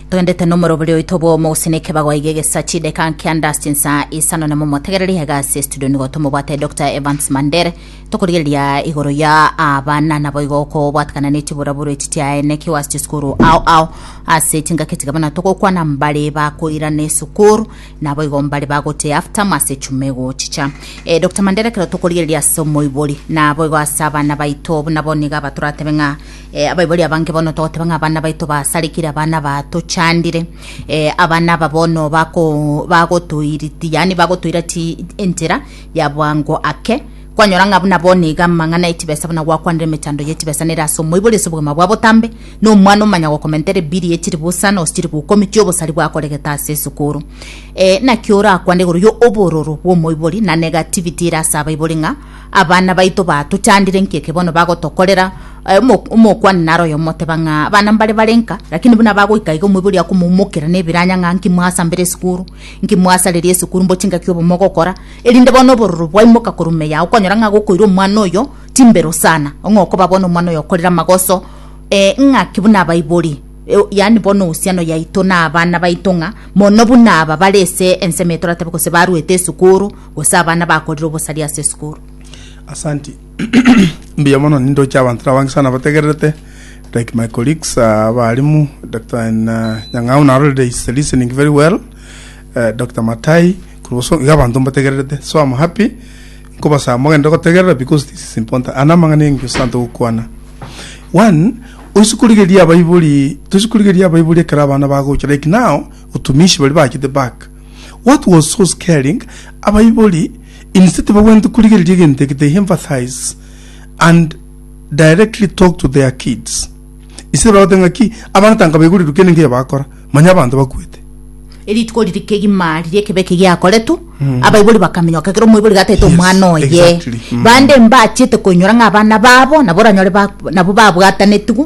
twendete nomorobori oito bwomo gose nekebago iga egesa chideka nkianda chinsa isano nemo motegereri iga ase studio nigo tomobwate dr evans mandere tokorigereria igoro ya abana nabo igo okobwatikana ne chiburaburu echi chiaene kigo ase chisukuru ao ao ase chingaki tiga bana togokwana mbare bakoirana esukuru nabo igo mbare bagote after mase chuma egochicha eh, dr mandere kero tokorigereria ase omoibori nabo igo ase abana baito buna boniga abatoratebe ng'a Eh, abaibori abange bono togoteba ng'a abana baito basarekire abana batochandire eh, abana aba bono bako- bagotoiriti yani bagotoira ti entera ya bwango ake kwanyora ng'a buna bono iga amang'ana etibesa buna gwakwanire emechando ya etibesa nere ase omoibori ase obogima bwa botambe na omwana omanya gokomentera ebiri echiri bosa na gose chiri gokumi chia obosari bwakoregete ase esukuru eh, naki orakwane igoro ya obororo bwa omoibori na negativity ere ase abaibori ng'a Abana baito batochandire nki eke bono bagotokorera? Eh, omo- Omokuani naro oyomoteba ng'a abana mbare bare nka, lakini buna bagoika iga omoibori akomoumokera nebiranya ng'a nki mwasa mbere esukuru, nki mwasareria esukuru mbochi ngaki obo mogokora, erinde bono obororo bwaimoka korwa ime yao okonyora ng'a gokoira omwana oyo timbero sana, ong'e okoba bono omwana oyo okorire amagoso eh, ng'aki buna abaibori eh, yaani bono ohusiano yaito na abana baito ng'a mono buna aba bare ase ensemo etoratebe gose barwete esukuru, gose abana bakorire obosaria ase esukuru. Asanti. Mbuya mono nindoche abanto nabange sana bategererete like my colleagues uh, abalimu Dr. N- uh, Nyang'au narorire is listening very well uh, Dr. Matai kuruboso iga abanto mbategererete so I'm happy nkobasaba mogende gotegerera because this is important ana amang'ana engio santo gokwana one oisikurigeria abaibori toisikurigeria abaibori ekero abana bagocha like now otumishi bari bachete back What was so scaring? Abaibori instead bagwente korigereria egento eke they empathize and directly talk to their kids. Instead bagote ng'a ki abana tanga baigorerwe kende nkeyo bakora manya abanto bakwete. erituko riri kegima riria ekebe eke giakoretwe abaibori bakaminyoka ekero omoibori gataete Yes, omwana oye exactly. Mm. bande mbachete koinyora ng'a abana babo nabo oranyore ba- nabo babwatanetiwe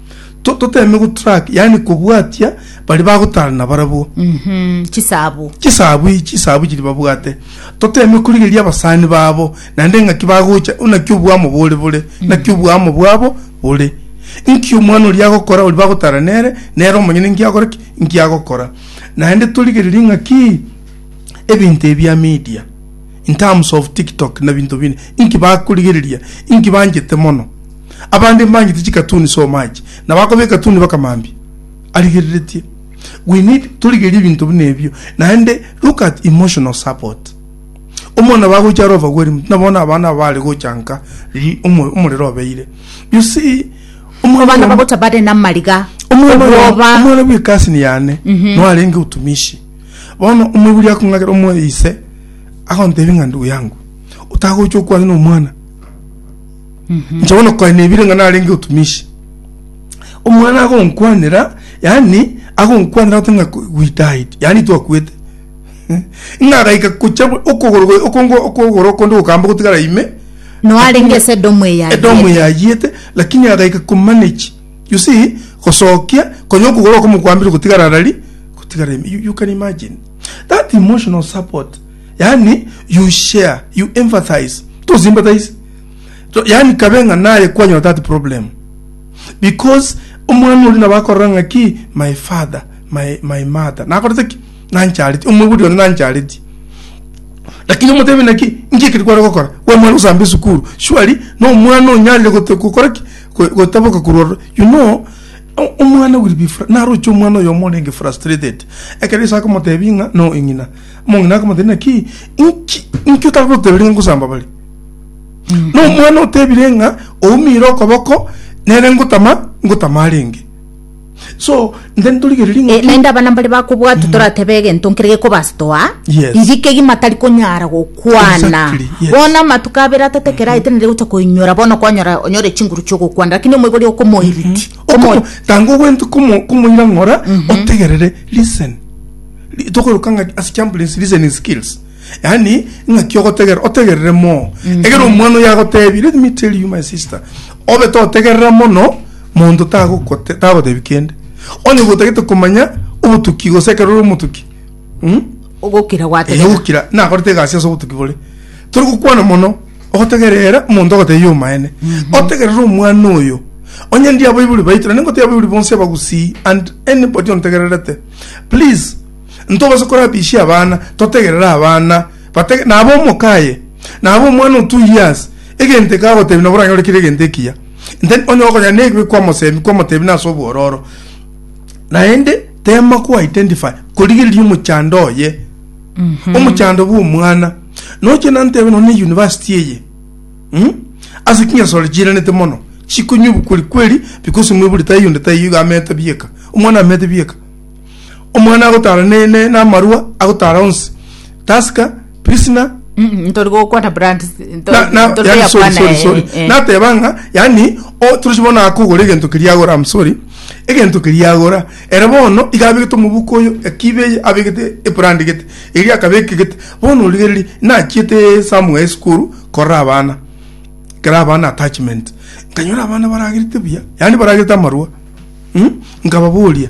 To- toteeme gotrack yaani kobwatia baria bagotara nabarabwo Mhm, chisabu chisabu ichi chisabu chiri babwate toteeme korigeria abasani babo naende eng'aki bagocha naki obwamo bore bore naki obwamo bwabo bore inki omwana oria agokora oria bagotara nere nere omonyene inki agokora ki inki agokora naende torigererie ng'aki ebinto ebi bia media In terms of TikTok na binto binde, inki bakorigereria? Inki banchete mono? Abande mbanchete chikatuni so much, na bakoba ekatuni baka mambia. Arigereretie. We need torigerie binto buna ebio. Naende look at emotional support. Omwana bagocha are overwhelmed, na bono abana aba bare gocha nka ri- omo- omorero obeire. You see, omwana Abana oyomo- bagocha bare namariga, omwana oyomo- obwoba. omwana bw'ekasini yane, no arenge otumishi. Bono omoibori akong'akera omoyo ise, agontebia ng'a ndugu yangu, otagocha okwane nomwana, inche bono koe nebire ng'a narenge otumishi. Omwana agonkwanera, yaani agonkwanera agote ng'a ku- we died, yaani twakwete. Ng'a agaika gocha bwe- okogoro gwe- okongo- okogoro okonde gokamba gotigara ime, Nao arenge ase edomu eyayete. edomu eyayete, lakini agaika komanage You see, gosokia, konya okogoro okomokwambire gotigara arari, gotigara ime. You, you can imagine. That emotional support. Yani, you share, you empathize. To sympathize. To, yani kabe ng'a naye kwanyora that problem. Because omwana ori nabo akorora ng'a ki, my father, my, my mother. Nakorete ki? Nanchareti. Omwebudi one nanchareti. Lakini omotebe naki, nki ekeri kware gokora? Gwa mwana gosamba esukuru. Surely, no mwana onyarire gote- gokora ki? Go- gotaboka korwa ro- you know o- omwana will be fr- naroche omwana oyomo orenge frustrated ekero ase akomotebia ng'a no eng'ina omong'ina akomotebia naki inki inki otagotebire ng'a ngosamba bare na omwana otebire ng'a oumire okoboko nere ngotama ngotama arenge Eh, naende abana mbare bakobwatwa mm. toratebe egento nkere gekobastoa inki kegima tari konyara gokwana bono amatuko abere atete kera mm-hmm. aetenere gocha koinyora bono kwanyora onyore chinguru chiogokwana lakini omoibori okomoiriti mm-hmm. tanga ogwente komoira ng'ora mm-hmm. otegerere listen tokoruka ng'a as champions listening skills yani ng'aki ogotegera otegerere moo egere omwana oyo agotebi let me tell you my sister obe totegerera mono Monto tagokote- tagotebi kende, onye gotagete komanya obotuki, gose ekero ore omotuki, mm? ogokira Eh, gwategena ogokira nakorete egasi ase obotuki bore tori gokwana mono ogotegerera omonto ogotebi omaene otegerere omwana oyo onye ndi abaibori baito naende ngotebi abaibori bonsi abagusii and anybody ontegererete please ntobase korabisia abana totegerere abana batege- nabo omoka aye nabo omwana o two years Egento eke agotebi nabo oranyorekire egento ekiya, Intenti onye gokonyora nebibe kw'omosemi kw'omotebi nase obwororo, naende teema ko identify korigereria omochando oye, omochando bw'omwana. Noche nantebe nonya ne university eye, mm, ase chinyasaore chiiranete mono, chikonywa ebukori kweri because mwaibori taiyo onde taiyo iga ameete bieka, omwana ameete bieka. Omwana agotara ne- ne- namarua agotara onsi, Tusker, Pilsner, Mm, ntori gokwana brand nto- na- na- ntori yani, sorry, koyakwana, sorry, eh, sorry. eh. nateba ng'a yani o- torochi bono akogora egento keria agora am sorry egento keria agora ere bono iga abegete omobuko oyo ekibe eye abegete ebrand gete eria akabeka egete bono origereri nachiete somewhere esukuru korora abana kera abana attachment nkanyora abana baragerete buya yani baragerete amarua Hm nkababoria,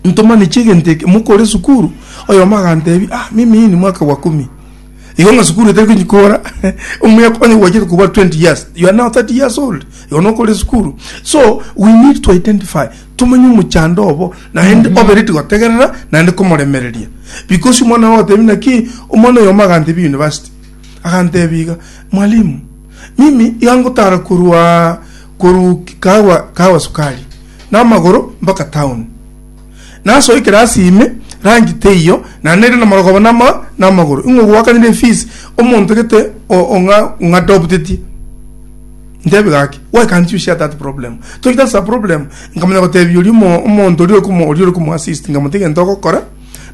Ntomanechi egento eke mokore esukuru? Oyomo agantebia, Ah, mimi hii ni mwaka wa kumi. Igo ng'a sukuru etari konyi kora omuya onye gwachete koba twenty years, you are now thirty years old, igo nokore esukuru. So we need to identify, tomanye omochando obo naende obereti gotegerera naende komoremereria. Because omwana ogotebia ng'a ki, omwana oyomo agantebia university, agantebia iga, Mwalimu, mimi iga ngotara korwa. korwa kawa, kawa sukari namagoro mpaka town nasoikere ase ime rangi teiyo naende rende namara koba nama namagoro ing'o gwakanire efees omonto gete o- ong'a ong'a adoptetie ntebi gaki why can't you share that problem told that's a problem nkamanya gotebia oria omo omonto oria okomo oria ore komo assist nkamotebia egento ogokora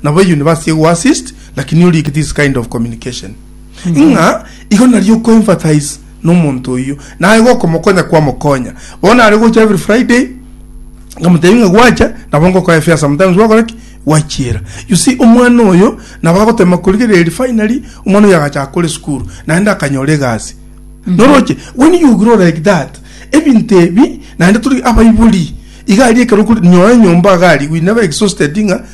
nabo university egoassist lakini orikire this kind of communication Ng'a igo nario oko empathize nomonto oyio, naye gokomokonya kwamokonya. Bono are gocha every Friday, nkamotebia ng'a gwacha, nabo ngokora efiara sometimes gwakora ki? Gwachiera. You see, omwana oyo nabo agotema korigereria finally omwana oyo agachaka kore esukuru, naende akanyora egasi. Noroche, when you grow like that, ebinto ebi, naende tori abaibori, iga aria ekero okori, nyora enyomba iga aria, we never exhausted ng'a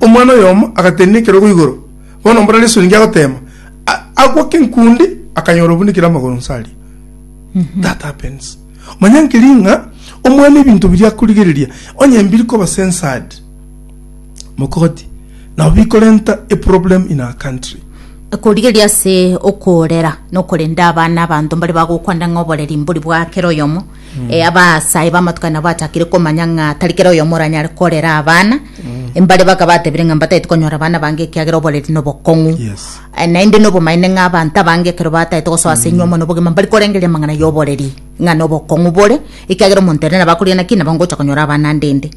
Omwana oyomo agatenena ekerogo igoro, bono mbora nesuriingi agoteema, a- agwa kenkundi, akanyora obunekire amagoro nse aria. That happens. Manya nkeri ng'a omwana ebinto biria akorigereria, onye mbiri koba censored, mogoti, nabo bikorenta a problem in our country. korigereria ase okorera na okorenda abana abanto mbare bagokwanda ng'a oboreri mbori bwa kera oyomo Eh, abasae b'amatuko aya nabo bachakire komanya ng'a tari kera oyomo oranyare korera abana mbare baka batebire ng'a mbataete konyora abana bange ekiagera oboreri nobokong'u Yes. Eh, naende nobomaene ng'a abanto abange ekero bataete gosoa ase enyiomo nobogima mbari korengeria amang'ana y'oboreri ng'a nobokong'u bore ekiagera omonto ere nabo akorire naki nabo ngocha konyora abana ande ende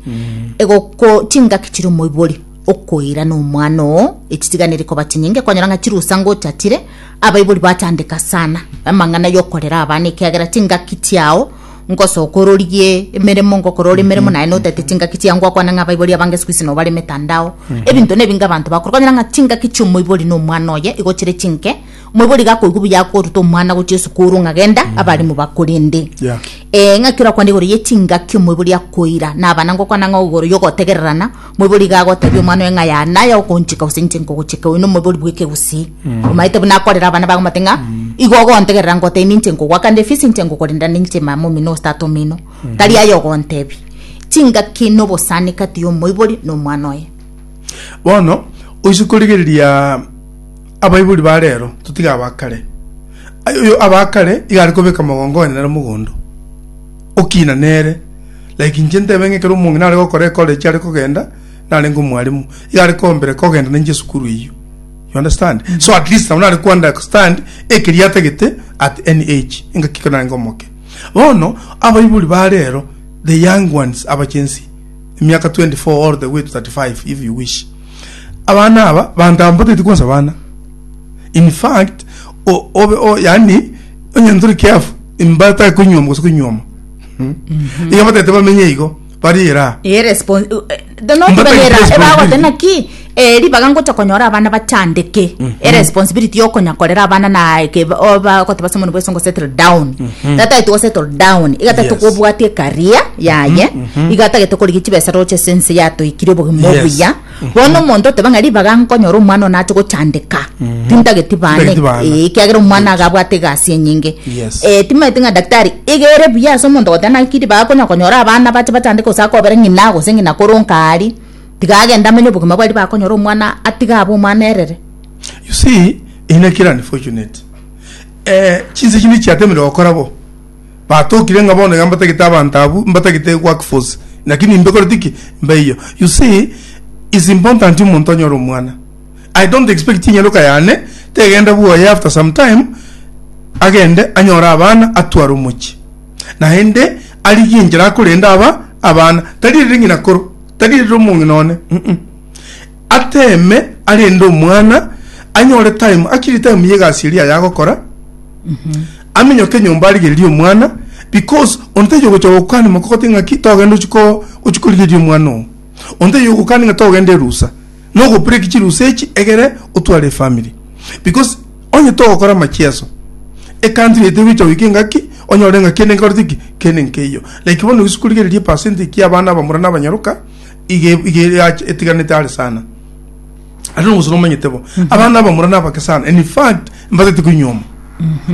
egoko chingaki chiri omoibori okoira nomwana oo echitiganeri koba chinyinge kwanyora ng'a chirusa ngotatire abaibori batandeka sana amang'ana yokorera abana ekiagera chingaki chiao ngosoka ororigie emeremo ngokora ore emeremo naye notete chingaki chiao ngwakwana ng'a abaibori abange siku hizi nobare emetandao ebinto na ebinge abanto bakora kwanyora ng'a chingaki chia omoibori na omwana oye igo chire chinke omoibori iga akoigwa buya akoruta omwana gochia esukuru ng'a genda abarimu bakorende Yeah. eh, ng'aki orakwane igoro ye chingaki omoibori akoira na abana ngokwana ng'a igoro yogotegererana Moibori iga agotebia omwana oye ng'a ya naye okonchika gose inche nkogochika oyo nomoibori bw'ekegusii. Omanyete buna akorera abana bago omate ng'a igo ogontegerera ngotebia ninche nkogoakande efisi inche nkokorenda ninche mama omino gose tata omino. Tari aye ogontebia. Chingaki na obosani kati y'omoibori na omwana oye. Bono oise korigereria abaibori ba rero, totige aba kare. Aye oyo aba kare iga are kobeka mogongo one nere mogondo, okina nere. Like inche ntebe ng'a ekero omong'ina are gokora ekora echio are kogenda, narenge omwalimu, iga are kombera kogenda nainche esukuru eyio. You understand? So at least nabo nare ko understand ekeria atagete at any age, engaki ekero narenge omoke. Bono, abaibori ba rero, the young ones, abachensi, emiaka 24 all the way to 35 if you wish. Abana aba, bantambotetie kwansa abana. In fact, o, obe, o, yani, onye ntore careful, imbatake koinywoma gose koinywoma. iga batete bamenye igo bariere aa Eh, respon- uh, eh, the- not Mbata banyera, responsibility. ebagoteba naki eh, ribaga ngocha konyora abana bachandeke eresponsibility yokonya korera abana naeke bagoteba someone bwese ngo settle down tata to settle down igatagete Yes. kobwatia ekaria yaye igatagete korigia chibesa roche sense yatoikire obogima Yes. obuya Bono omonto oteba ng'a ribaga nkonyora omwana one ache gochandeka, tintageti bane, Tintageti bana. eh, ekiagera omwana iga abwate egasi enyinge. Yes. Eh, timaeti ng'a daktari iga ere buya ase omonto goteba naki ribaga konya konyora abana bache bachandeke gose akobera ng'ina gose ng'ina kore onka aria, tiga agende amenye obogima bwaye ribaga konyora omwana atige abe omwana erere. You see, eye naki ere unfortunate. Eh, chinsa echi nichiatemeire gokora bo. Batokire ng'a bono iga mbatagete abanto abwo, mbatagete work force. Naki nimbekoreti ki? Mbeiyo. You see, it's important omonto onyore omwana. I don't expect enyaroka yane tegenda bwoye after some time agende anyore abana atware omochie. Naende arigie enchera akorenda aba abana. Tari erere ng'ina koro, tari erere omong'ina one, mm. ateme arende omwana anyore time akiri time yegasi eria yagokora aminyoke enyomba arigererie omwana because onteje ogocha gokani moko gote ng'aki togenda ochiko ochikorigeria omwana oo onteje ogokani ng'a togenda erusa nogobreak chirusa echi egere otware efamily because onye togokora amachieso ecountry ete egocha goika engaki onyore ng'a kende nkorete ki kende nkeiyo like bono gose korigereria percentage ya abana abamura na abanyaroka iga iga irache- etiganete are sana ate nogosuna omanyete bo abana abamura nabake sana and in fact mbatete koinyoma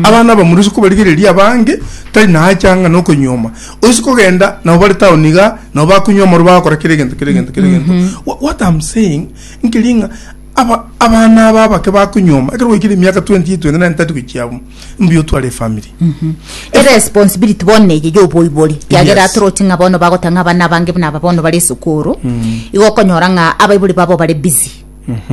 abana abamura ase kobarigereria abange tari naacha ng'a nokoinyoma oise kogenda nabo bare town iga nabo bakunywa amaro bagakora kera egento kera egento kera egento Wha- what am saying nkeri ng'a aba- abana aba abake bakunyoma ekero gwaikire emiaka 20 29 30 gochia abwo mbuya otware efamiri eresponsibility bono neye ya oboibori kiagera Yes. atoroti ng'a bono bagota ng'a abana abange buna aba bono bare esukuru igo okonyora ng'a abaibori babo bare busy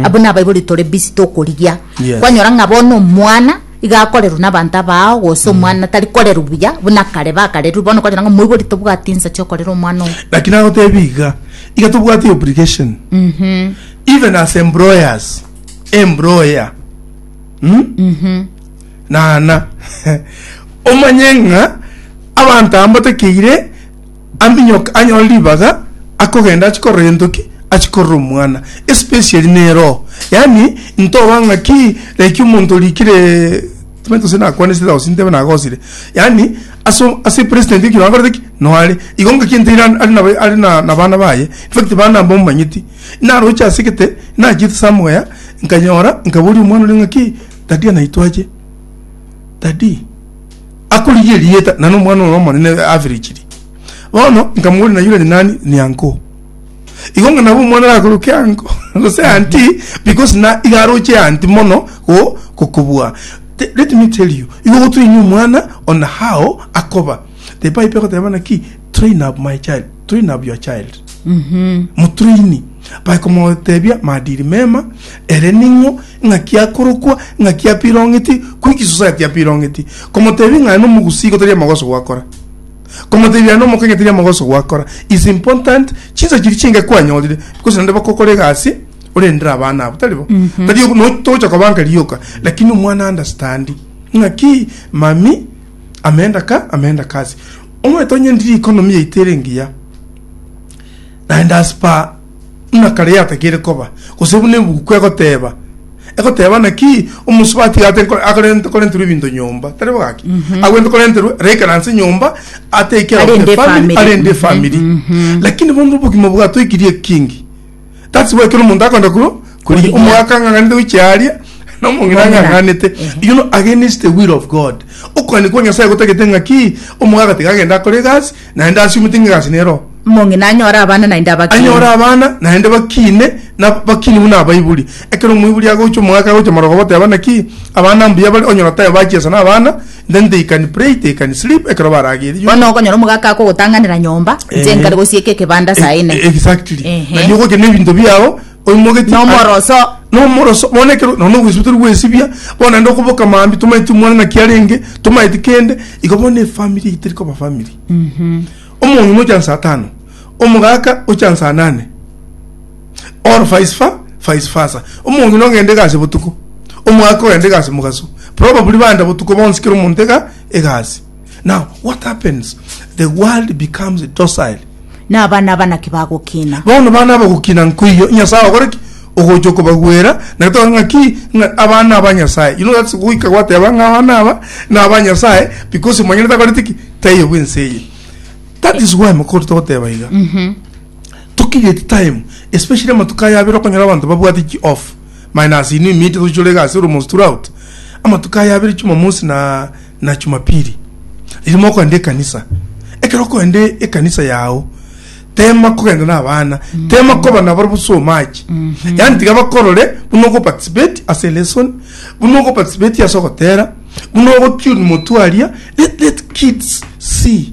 abo na abaibori tore busy tokorigia Yes. kwanyora ng'a bono omwana iga akorerwa na abanto abao gose omwana tari korerwa buya buna kare bakarerwa bono okonyora ng'a omoibori tobwati ensa chiokorera omwana oyo lakini agotebi iga iga tobwate obligation even as employers employer naana omanye ng'a abanto aba mbatakeire aminyoke anyore ribaga akogenda achi korora gento ki achi korora omwana especially ne roho yaani ntoba ng'a ki like omonto orikire timanyete gose nakwanesete gose ntebe nagosire yaani ase ase president ekero akorete ki noare igo ngaki nteire are nabo are na abana baye infact bana aba omanyeti. Naroche ase egete, nachete ase amoya, nkanyora, nkaboria omwana oria ng'aki, Daddy anaitwa ache? Daddy? Akorigia erieta, na nomwana oro omonene averechiri. Bono, nkamoboria, na yure ninani? Ni uncle. Igo ng'a nabo omwana arakoroke uncle, gose auntie, because na iga aroche auntie mono go gokobua. Te- Let me tell you, igo gotoini omwana on how akoba. The Bible egoteba naki? train up my child train up your child motraini bae komotebia maadili mema ere ning'o ng'aki akorokwa ng'aki apirong'eti kwiki society apirong'eti komotebia ng'a nomogusii igo tari amagoso gwakora komotebia aye nomokenya tari amagoso gwakora is important chinsa chiria chinke kwanyorire because naende bakokora egasi orendere abana abwo tari bo tari ogo no togocha kobanka rioka lakini omwana understandi ng'aki mami ameenda ka, ameenda kasi. Omanyete onye ndiri economy yaito ere engiya, naende as per buna kare yatakeire koba, gose buna ebuku egoteba, egoteba naki omosubati iga ate nko- akorente korenterwa ebinto nyomba, tari bo gaki? Agwente korenterwa raikaranse nyomba, ate care of Arende the family, efamiri. arende efamiri. Lakini bono obogima bwatoikirie ekingi, that's why ekero omonto akonda kuru Kurigia. omogaka ang'ang'anete goichia aria na omong'ina Omong'ina. ang'ang'anete you know against the will of god okogania kwa nyasaye gotagete ng'aki omogaka tiga agende akore egasi naende asiumete ng'a egasi nero Omong'ina anyore abana naende abakine. anyore abana naende bakine na bakini buna abaiburi ekero omoiburi agocha omogaka agocha marogoba oteba naki abana mbuya bare onyora tae bachia ase na abana Then they can pray, they can sleep, ekero baragerie. Bono okonyora omogaka akogotang'anera nyomba, inche nkare gosieka ekebanda saa ine. E- Exactly. Ehe. Na nyogoke ne binto biao, oimogetie. Nomoroso. Nomoroso. Bono ekero, nono ogwesibia tori gwesibia, bono naende okoboka maambia, tomaeti omwana naki arenge, tomaeti kende, igo bono efamiri eyio teri koba famiri. Omong'ina ocha nsa tano, omogaka ocha nsa nane. or vice fa vice versa. Omong'ina ogenda egasi botuko, omwaka ogenda egasi mogaso. Probably banda botuko bonsi kera omonto ega egasi. Now what happens? The world becomes docile. Na abana aba naki bagokina? Bono bana abagokina nkoiyo Nyasaye ogore ki? Ogocha okobagwera na tokore ng'a ki? Ng'a abana aba Nyasaye. You know that's goika gwateba ng'a abana aba na aba Nyasaye because omonyene takoreti ki? Taiyo bw'ense eye. That is why mokori togoteba iga. Tokigeti time especially amatuko aya abere okonyora abanto babwate chi off minus inwe imiite tochichore egasi oromonsi throughout amatuko aya abere chumamosi na na chumapili riria mokoenda ekanisa ekero okoenda ekanisa yago tema kogenda na abana tema koba nabarobwo boswa omache yaani tiga bakorore buna ogo participate ase lesson buna ogo participate ase ogotera buna ogo tune motwe aria let let kids see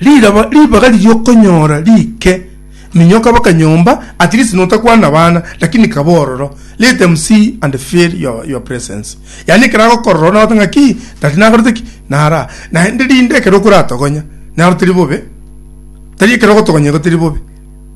Riraba ribaga riria okonyora rike minyo kaba kanyomba at least notakwana abana lakini kaba ororo let them see and feel your, your presence yani ekero agokorora nagote ng'a ki tari nakorete ki nara naende rinde ekero okoratogonya naro teri bobe tari ekero ogotogonyerwa teri bobe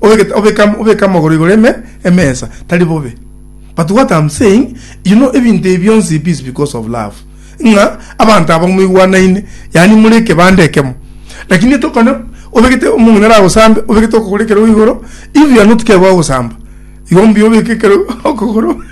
Obeke, obeka, obeke amagoro igoro eme emesa tari bobe. But what I'm saying, you know, ebinto ebi bionsi it is because of love. Ng'a abanto aba moigwanaine, yani more ekebande ekemo. Lakini etokone obegete omong'ina aragosambe, obegete okogoro ekero igoro, if you are not care gwagosamba, igo mbuya obeke ekero okogoro.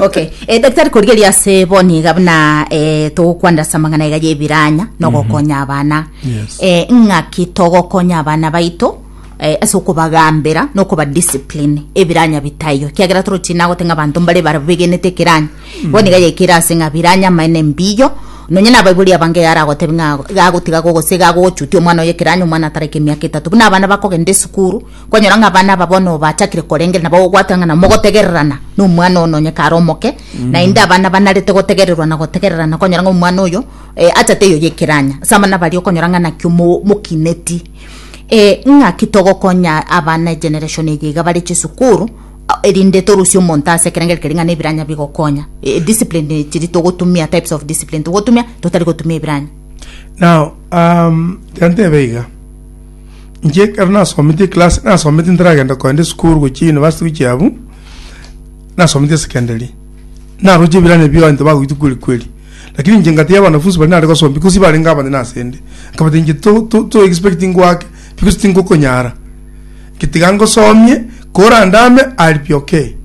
okay eh, daktari korigeria ase bo niga buna eh, togokwanera ase amang'ana iga y'ebiranya nogokonya abana Yes. eh, ng'aki togokonya abana baito eh, ase okobagambera na okobadiscipline ebiranya bitaiyo kiagera toro chinagote ng'a abanto mbare bara begenete ekeranya igo niga yekere ase ng'a biranya amaene mbiyo nonye na abaibori abange yara agotebi ng'a gagotiga go gose gagogochutia omwana oye ekeranya omwana atareke emiaka etato buna abana bakogenda esukuru kwanyora ng'a abana aba bono bachakire korengera nabo ogwateba ng'a na mogotegererana na omwana oyo nonye kare omoke naende abana banarete gotegererwa na gotegererana kwanyora ng'a omwana oyo eh, achate eyo yekeranya ase abana baria okonyora ng'a naki omo- mokineti Ee, ng'aki togokonya abana egeneration eye iga bare chisukuru a- erinde torusie omonto ase ekerengeri keria ng'a nebiranya bigokonya E- discipline chiri togotumia types of discipline togotumia totari gotumia ebiranya Now, um, reka ntebe iga. Inche ekero nasometi eclass, nasometi ntaragenda kogenda esukuru gochia university gochia abwo, nasometi esekenderia. Naroche ebiranya ebio abanto bagoita kweri kweri. Lakini inche ngatebia abanafunsi baria nare gosombia, gose barenge abanene asende, nkabateebia, Inche toexpecti ngoake, because tingokonyara. Getiga ngosomie, korandame I'll be okay.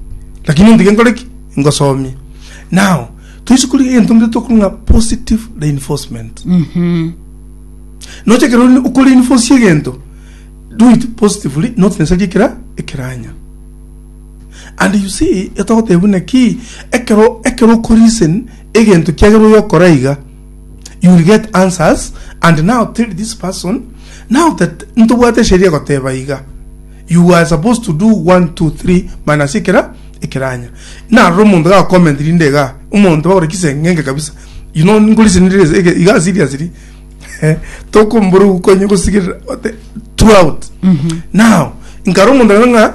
Lakini ontige nkore ki? Ngosomie. Now, toise korigia egento ngeria tokorwa ng'a positive reinforcement. Nocha ekero ore- okoreinforce egento, do it positively, not necessarily ekera- ekeranya. And you see getogoteebia buna ki, ekero ekero oko reason egento kiagera oyokora iga, you will get answers and now tell this person now that ntobwate esheria egoteba iga you are supposed to do one two three minus ekera ekeranya narora omonto ga comment rinde iga omonto bagore kisengenge kabisa you know ningo reason rire iga seriously eh, tokombora ukonye gosigerera ote throughout now nkara omonto ng'a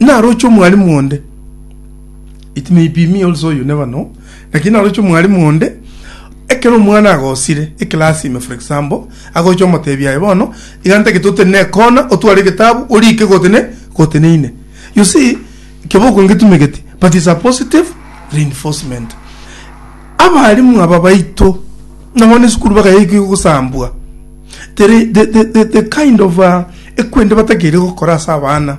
Naroche omwalimu onde. It may be me also, you never know. Lakini naroche omwalimu onde, ekero omwana agosire ekelasi ime for example, agocha omotebia aye bono, iga ntagete otene ne kona, otware egetabu, orike gotene, goteneine. You see, keboko ngetumegeti, but it's a positive reinforcement. Abalimu aba baito, na bono esukuru bagayeika igo gosambwa, there i- the, the, the, the kind of uh, ekwende batakeire gokora ase abana.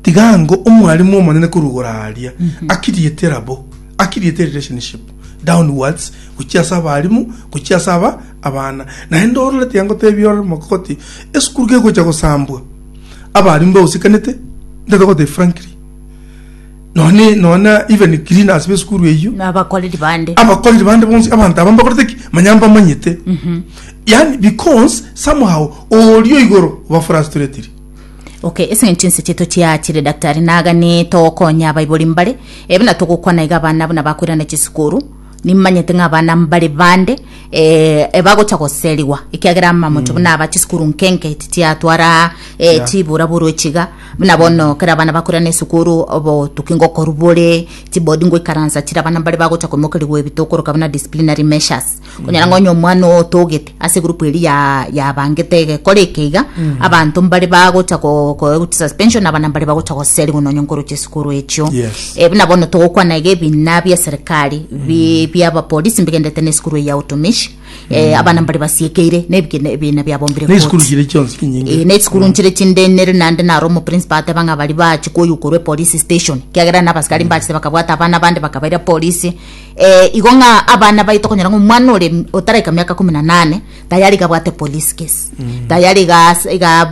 Tiga ngo omwalimu omonene korwa igoro aaria akiriete erabo, akiriete relationship downwards gochia ase abarimu, gochia ase aba abana. Naende orore tiga ngotebia orore omoko goti esukuru gegocha gosambwa abarimu bagosekanete, ntaete gogotebia frankly. nonye nona even cleaners besukuru eyio nabakoreri bande abakoreri bande bonsi abanto aba mbakorete ki manya mbamanyete mhm. yani because somehow orio igoro oba frustratiri okay ese ngintu inse cheto chiachire daktari nagane tokonya abaibori mbare ebina togokwana iga abana abuna bakwirana chisukuru Nimanyete ng'a abana mbare bande eh, ebagocha goserigwa ekiagera amamocho buna aba chisukuru nkenke titiatwara eh, chibura buru echiga buna bono kera abana bakora na esukuru obotuki ngokoru bore chibodi ngoikaransa chira abana mbare bagocha koimokerigwa ebito okoroka buna disciplinary measures konyara ng'a onye omwana otogete ase egurupu eri ya yabangete egekora eke iga abanto mbare bagocha ko ko eguti suspension abana mbare bagocha goserigwa nonye nkoroche esukuru echio Yes. Eh, buna bono togokwana iga ebina bia serikali bi- bia abapolisi mbigendete na esukuru eyi ya utumishi Eh, abana mbare basiekeire na ebigena- ebina biabombire ne esukuru koti. chire chionsi Eh, chinyinge ne esukuru nchire chinde nere nande naro omoprincipa ateba ng'a bari bachi koyukorwa epolice station kiagera na abasikari mbachete bakabwata abana bande bakabaira polisi Ee, igo ng'a abana baye tokonyora ng'a omwana ore otaraika miaka kumi na nane tayari iga abwate police case mm. tayari iga iga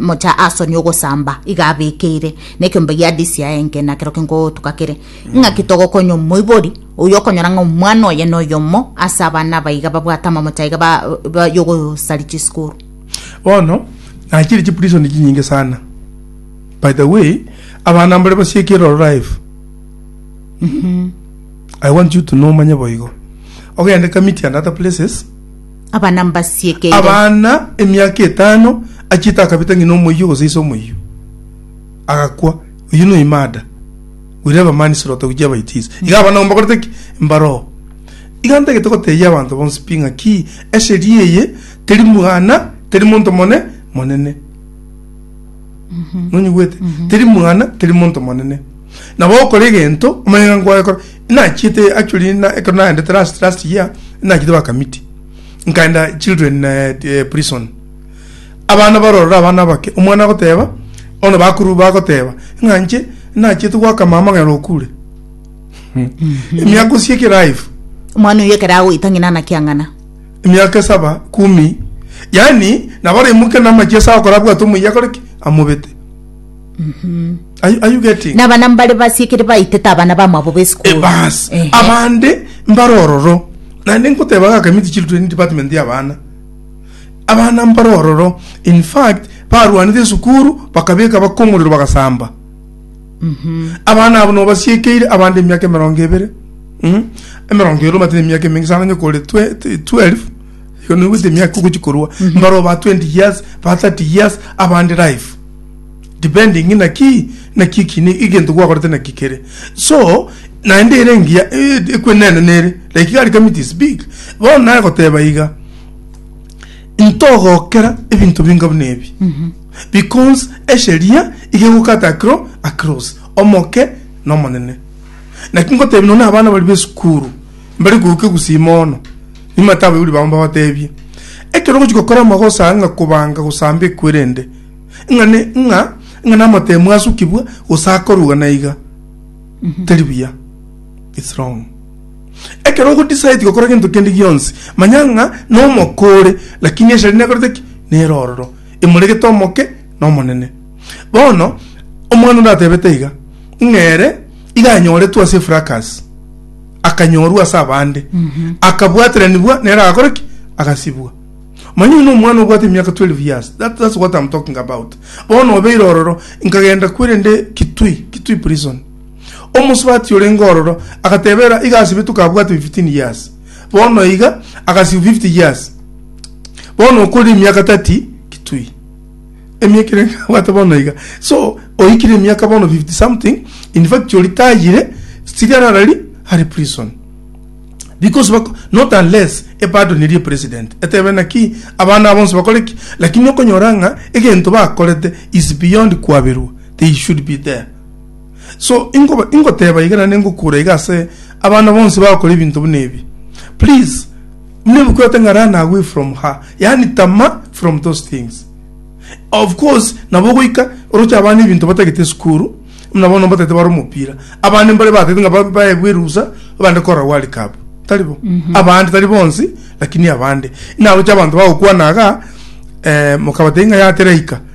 mocha asoni ogosamba iga abekeire nekiombe gia disi ya enke na kero kingo tukakire mm. ng'a kitogokonya omoibori oyo okonyora ng'a omwana oye no yomo ase abana baiga babwate amamocha iga ba, ba yogosari chisukuru bono nachiri chiprison chinyinge sana by the way abana mbare basiekire life I want you to know omanye boigo. Ogende kamiti and other places. Abana mbasiekeire. Abana emiaka etano achita akabita ng'ina omoyio gose ise omoyio. Agakwa. Oyo no imada. We never man slota uji abaitizi. Mm. Iga abana mbakorete ki? Mbaro. Iga ntagete goteyia abanto bonsi pinga ki esheria eye teri mwana teri monto mone monene. nonyigwete teri mwana teri monto monene nabo okora egento omanye ng'a nkoyekora nachiete actually na ekero naendete last last year nachiete bakamiti nkaenda children eh, eh, prison abana barorora abana abake omwana agoteba bono bakuru bagoteba ng'a nche nachiete gwaka mama ng'a nokure emiaka osieke life omwana oyo ekero agoita ng'ina anakiang'ana emiaka esaba kumi, yaani nabo araimoke namache ase agokora abwate omoyia akore ki? Amobete. Are you- are you getting? na abana mbare basiekire baitete abana bamwabo Eh, b'esukuru bas Ehe. abande mbare ororo naende nkoteba ga community children department ya abana abana mbare ororo in fact barwanire esukuru bakabeka baka omorero bagasamba Abana abo nobasiekeire abande emiaka emerongo ebere, mm, emerongo ebere obate nemiaka emenge sana, onye kore twe- t- 12 igo noigwete emiaka ogochi korwa mbare oba 20 years ba 30 years abande life depending ng'ina ki naki ekine egento gwakorete naki kere so naende ere engiya eh, ekwenene nere like gari coming to speak bono nagoteba iga ntogokera ebinto binga buna ebi Because esheria iga egokata akero akeros, Omoke n'Omonene. Naki ngotebia nonya abana baria b'esukuru, mbare koigwa egusii mono, nimanyete abaibori babo mbabatebie, ekero ogochia gokora amagosa ng'a kobanga gosamba ekwerende, ng'a ne, ng'a, ng'a namatemu asukigwe, gose akorugwa na iga, teri buya. It's wrong. Ekero ogodecide gokora gento kende gionsi, manya ng'a nomoka ore, lakini esheria nekorete ki? Nere ororo. imoregete omoke na omonene. Bono omwana onde atebete iga, ng'a ere iga anyoretwe ase efrakas, akanyorwa ase abande, akabwateranigwa, nere agakora ki? Agasibwa. Manya oino omwana obwate emiaka 12 years. That, that's what I'm talking about. Bono obeire ororo, nkagenda kwerende Kitui, Kitui prison. Omosubati orenge ororo, agatebera iga asibetwe kabwate 15 years. bono iga agasiu 50 years bono okore emiaka 30 kitui emiaka ere abwate bono iga so oikire emiaka bono 50 something in fact oritayire sigara arari ari prison because bako not unless epardonirie president etebe naki abana abo bonsi bakore ki lakini okonyora ng'a egento bakorete is beyond kwaberwa they should be there So ingo ingoteba iga na ningokura iga ase abana bonsi bagokora ebinto buna ebi. Please muna ebukwete ng'a run away from her yaani tama from those things. Of course nabo ogoika oroche abana ebinto batagete esukuru muna bono mbatagete bare omopira. Abande mbare batagete ng'a ba- baegwe erusa bande korora world cup tari bo? Abande tari bonsi lakini abande. Naroche abanto bagokwana iga eh, mokabatebia ng'a yatera ika.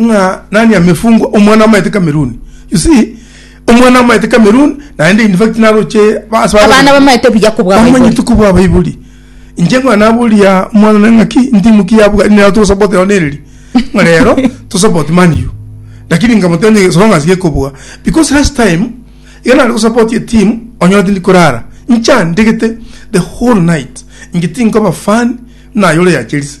ng'a nani amefungwa omwana amaete Cameroon you see omwana amaete Cameroon naende in fact naroche base abana bamaete buya kubwa bamanyete kubwa baibuli inche ng'a naburia omwana ne ng'aki ntimu ki ya Buganda nero togosupport nero nereri ng'a rero tosupport Man U lakini nkamotebia ng'a as long as gekobua because last time iga nare gosupport etimu onyore tindi korara ncha ndegete the whole night inche tinkoba fan buna aye ore ya Chelsea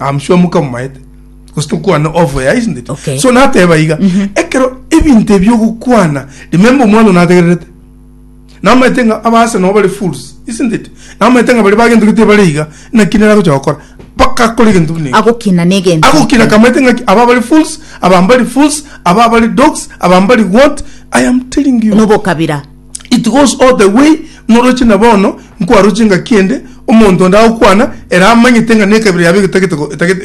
I'm sure mukamomaete gose tokwana off air isn't it Okay. so nateba iga ekero ebinto ebi ogokwana remember omwana nategererete namaete ng'a abase nabo bare fools isn't it namaete ng'a bare bagento gete bare iga naki nere agocha gokora mpaka akore egento buna eki agokina negento agokina kamaete ng'aki aba bari fools aba mbari fools aba bari dogs aba mbari what i am telling you nobokabira It goes all the way noroche na bono nkwaroche engaki ende omonto onde agokwana ere amanyete ng'a nekabira yabo egetagete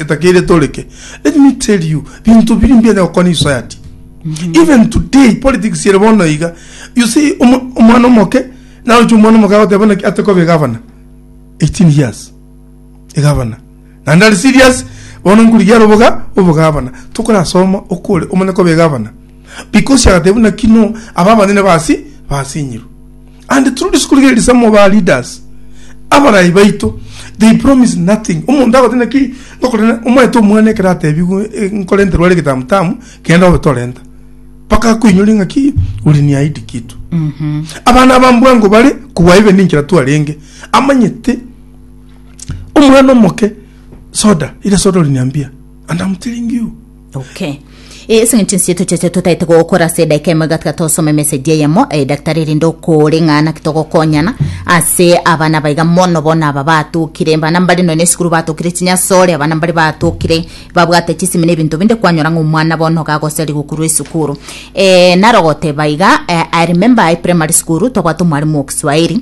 etakeire etoreke let me tell you binto biri mbuya onye gokwana isociety even today politics ere bono iga you see omwana omoke naroche omwana omoke agoteba naki atekobeka abana 18 years egavana, naende are serious bono nkorigia are oboga obogavana, tokorasoma okore omanye koba egavana, because agateba buna ki no aba abanene basi basinyirwe, and through this korigia ere some of our leaders abarai baito they promise nothing, omonto agote buna ki ngokorera omaete omwana ekero atebigwe eh, nkorenterwa are egetamu tamu genda obe torenta mpaka akoinyoria ng'a ki uliniahidi kitu abana aba mbwango bare kobua ibe ninchera twarenge amanyete omwana omoke soda ire soda ori niambia and I'm telling you okay ase ng'encho nsi eto chiacha totaete gokora ase edaika emo igatiga tosome message eyemo eh, daktari erinde okore ng'a naki togokonyana ase abana baiga mono bono aba batokire bana mbare nonya esukuru batokire chinyasore abana mbare batokire babwate chisimi na ebinto binde kwanyora ng'a omwana bono gagoseri gokurwa esukuru eh, naro goteba iga eh, I remember I primary school twabwate omwarimu o Kiswahili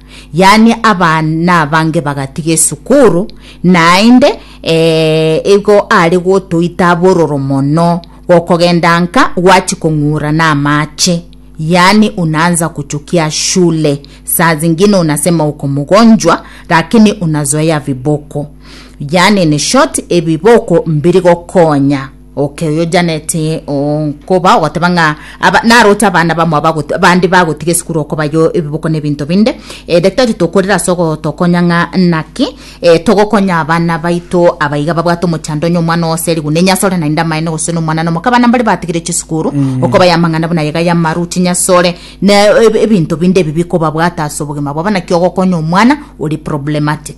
yaani abana abange bagatiga esukuru, naende eh, igo are gotoita abororo mono, gokogenda nka gwachi kong'ura namache yaani unaanza kuchukia shule, saa zingine unasema uko mgonjwa lakini unazoea viboko, yaani in short ebiboko mbiri gokonya. Oke oyo Janet oo nkoba ogoteba ng'a aba naroche abana bamo abagot bande bagotiga esukuru okobayo ebiboko na ebinto binde eh, daktari tokorera ase ogotokonya ng'a naki eh, togokonya abana baito abaiga babwate omochando onye omwana oo ase erigu nenyasore naende amaene gose na omwana na omaka abana mbare batigire chisukuru okobaya amang'ana buna iga y'amaru chinyasore na eb- ebinto binde ebi bikobabwata ase obogima bwabo naki ogokonya omwana ore problematic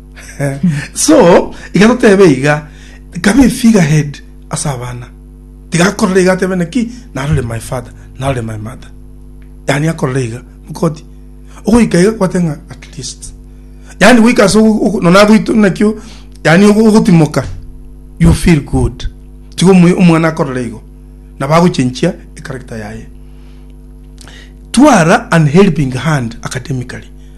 so iga totebe iga kabe figure head ase abana tiga akorora iga atebe naki narore my father narore my mother yani akorora iga mokoti ogoika iga kwate ng'a at least yani goika ase nonya agoito naki yani ogotimoka you feel good tiga omwana akorora igo nabo agochenchia echaracter yaye twara an helping hand academically.